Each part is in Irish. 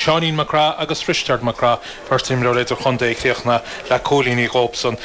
Seáinín Mac Craith agus Risteard Mac Craith, beirt imreoir idir-chontae a chríochnaigh le cúilíní dóibhsean.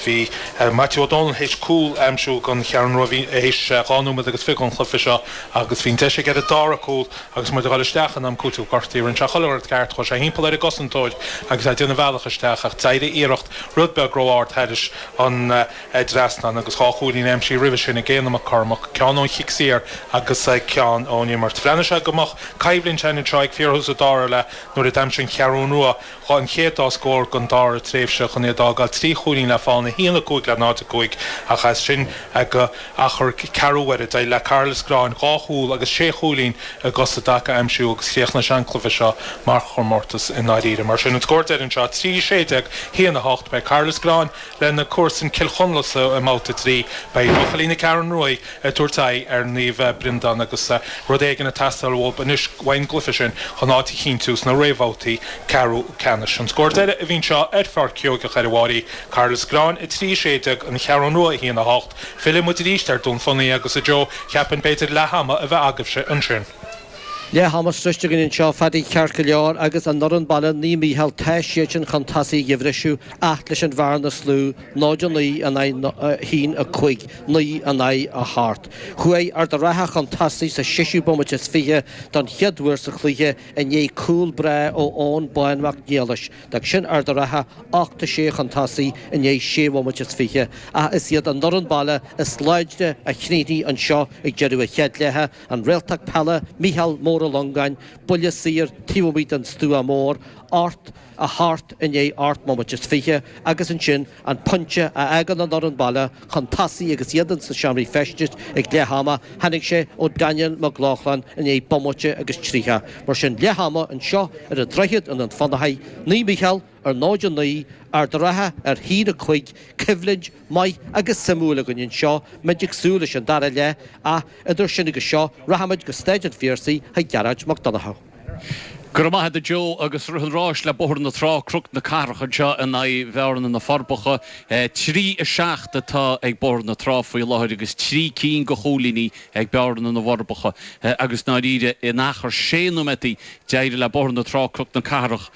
Bhí Maitiú Ó Dónaill théis cúl a aimsiú don Cheathrú Rua théis dhá nóiméad agus fiche an chluiche seo agus bhí an deis aige ar an dara cúl agus muid ag dul isteach in am cúitimh gortaithe rinne sé chuile shórt ceart, chuaigh sé thimpeall ar an gcosantóir agus é ag déanamh a bhealach isteach ach d'éirigh a iarracht rud beag ró-ard thairis an dtrasnán agus dhá chúilín aimsithe roimhe sin ag Éanna Mac Cormaic, ceann ón chic saor agus ceann ón imirt. Bhreathnaigh sé go mbeadh coimhlint theann anseo ag fíorthús an dara leath nuair a d'aimsigh an Cheathrú Rua an chéad dá scór den dara tréimhse chun é a d'fhágáil trí chúilín le fonn 1, 5 le 0, 5 ach as sin go achar ceathrú uaire d'éirigh le Cathair Loistreáin dhá chúl agus sé chúilín i gcos i dtaca a aimsiú agus chríochnaigh sé an cluiche seo mar chomórtas i ndáiríre mar sin an scór deiridh anseo 3 16 1 8 beidh Cathair Loistreáin Lena comharsain Cill Chonla sa mbabhta a trí, beidh buachaillí na Ceathrún Ruaidh ag tabhairt aghaidh ar Naomh Breandán agus rud éigin ag teastáil uathub anois ón gcluiche sin chun áit a chinntiú sna réamhbhabhtaí ceathrú ceannais. An scór deiridh a bhí anseo ar Pháirc Sheoigeach ar an bPrairie, Cathair Loistreáin 3, 16 An Cheathrú Rua 1, 8. Fillfidh muid arís ar Dún Fionnachaidh agus, a Joe, cheapfainn b'fhéidir leath ama a bheith agaibhse ansin. Leath ama sroichte againn anseo, a Phadaí, ceart go leor agus an fhoireann baile Naomh Mícheál, tá siadsan chun tosaigh ag an bhriseadh. ach leis an bhearna is lú, 0 9 in aghaidh 1 5 9 in aghaidh a hocht. Chuaidh Ard a' Rátha chun tosaigh sa seisiú bomaite is fiche don chéad uair sa chluiche i ndiaidh cúl breá ó Eoin Bán Mac Niallais. D'fhág sin Ard a' Rátha 8 6 chun tosaigh i ndiaidh sé bhomaite is fiche ach is iad an fhoireann baile is láidre a chríochnaigh anseo ag deireadh na chéad leithe, an réalta peile, Micheál Mór Ó Longáin, Buille Saor taobh amuigh den Stua Mór, ocht. a hocht i ndiaidh ocht mbomaite is fiche, agus ansin an pointe a fhágann an fhoireann baile chun tosaigh agus iad ins na seomraí feistis ag leath ama, tháinig sé ó Daniel Mag Lochlainn i ndiaidh bomaite agus tríocha. Mar sin, leath ama anseo ar an droichead i nDún Fionnachaidh, Naomh Mícheál, a náid a naoi, Ard a' Rátha a haon a cúig, coimhlint mhaith agus suimiúil againn anseo, muid ag súil leis an dara leath, ach idir sin agus seo, rachaimid go Stáid an Phiarsaigh chuig Gearóid Mac Donnchadha. Go raibh maith a't a Joe agus rith an ráis le Bóthar na Trá, Croc na Cathrach anseo in aghaidh Bhearna na Forbacha. Trí a seacht atá ag Bóthar na Trá faoi láthair agus trí cinn de chúilíní ag Bearna na bhForbacha agus i ndáiríre in achar sé nóiméataí d'éirigh le Bóthar na Trá Croc na Cathrach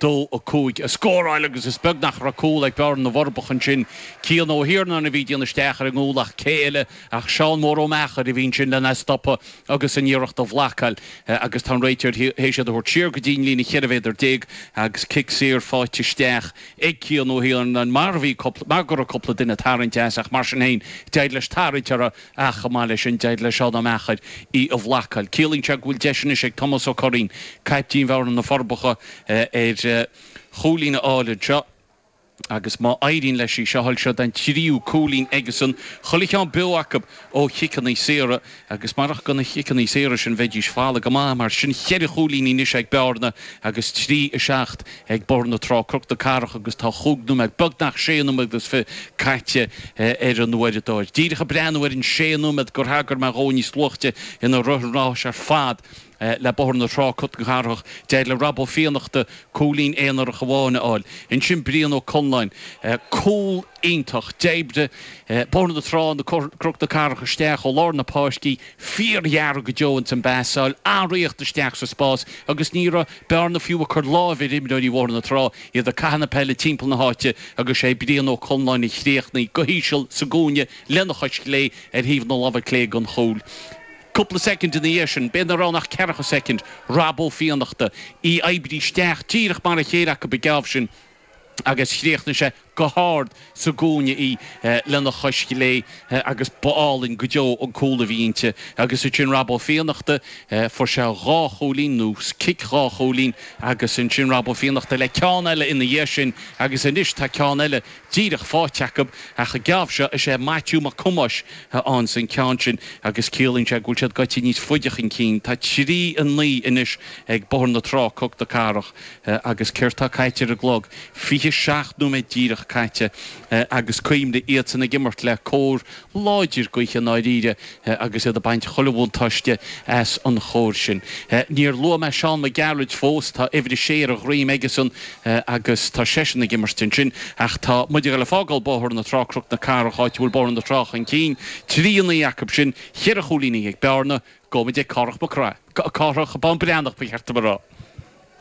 2 5 a scóráil agus is beag nach raibh cúl ag Bearna na bhForbacha ansin. Cian Ó hIarnáin a bhí ag déanamh isteach ar an gcúl ach cé eile? Ach Seán Mór Ó Meachair a bhí ansin lena stopadh agus an iarracht a bhlacáil agus tá an réiteoir théis iad a thabhairt siar go dtí an líne cheithre mhéadar déag agus cic saor faighte isteach ag Cian Ó hIarnáin mar bhí cúpla, mar go raibh cúpla duine ag tarraingt as ach mar sin féin d'éirigh leis tarraingt orthu ach chomh maith le sin d'éirigh le Seán Ó Meachair í a bhlacáil. Ciallaíonn sé go bhfuil deis anois ag Tomás Ó Curraoin, caiptín Bhearna, Na Forbacha ar chúilín a fháil anseo. agus má éiríonn leis í seo a fháil, seod é an tríú cúilín aigesan, chuile cheann beo acu, ó chiceanna saora, agus marach gona chiceanna saora sin, bheidís folamh go maith. Mar sin, cheithre chúilín anois ag Bearna agus trí, a seacht ag Bóthar na Trá, Cnoc na Cathrach, agus tá chúig nóiméad, beagnach sé nóiméad agus fiche, caite ar an uaireadóir. Díreach ag breathnú ar an sé nóiméad gur thagair mé dhó níos luaithe inar rith an rás ar fad, Le Bóthar na Trá Cnoc na Cathrach, d'éirigh le Rob Ó Fiannachta cúilín aonarach amháin a fháil. Ansin Brian Ó Conláin. Cúl iontach. D'oibrigh Bóthar na Trá Cnoc na Cathrach isteach ó lár na páirce fíorghéar go deo ins an bpasáil, ag ritheacht isteach sa spás agus ní raibh Bearna fiú ag cur láimhe ar imreoirí Bhóthar na Trá. Iad ag caitheamh na peile timpeall na háite agus sé Brian Ó Conláin a chríochnaigh go híseal sa gcúinne lena chois chlé ar thaobh na láimhe clé den chúl. Cúpla soicind ina dhiaidh sin, b'fhéidir nach raibh ann ach ceathracha soicind, Rob Ó Fiannachta, í oibrithe isteach díreach mar a chéile acu an geábh sin, agus chríochnaigh sé go hard sa gcúinne í lena chois chlé, agus ba álainn go deo an cúl a bhí inti, agus ansin Rob Ó Fiannachta, fuair sé dhá chúilín, nó cic dhá chúilín, agus ansin Rob Ó Fiannachta le ceann eile ina dhiaidh sin, agus anois tá ceann eile díreach faighte acu, ach an geábh seo, is é Maitiú Mac Thomáis a fhaigheanns an ceann sin, agus ciallaíonn sé go bhfuil siad goite níos faide chun cinn. Tá trí a naoi anois ag Bóthar na Trá, Cnoc na Cathrach, agus céard tá caite ar an gclog? Fiche seacht nóiméad díreach caite, agus cuimhnigh, iadsan ag imirt le cóir láidir gaoithe i ndáiríre agus iad ag baint chuile bhuntáiste as an chóir sin. Níor luaigh mé Seán Mac Gearailt fós, tá uimhir a sé ar a dhroim aigesan agus tá seisean ag imirt ansin, ach tá muid ag dul ag fágáil Bóthar na Trá, Cnoc na Cathrach, áit a bhfuil Bóthar na Trá chun cinn, trí a naoi acusan, cheithre chúilín in aghaidh Bearna, gabhfaidh muid ag Cárthach Mac Craith, Cárthach Bán Breathnach ba cheart dom a rá.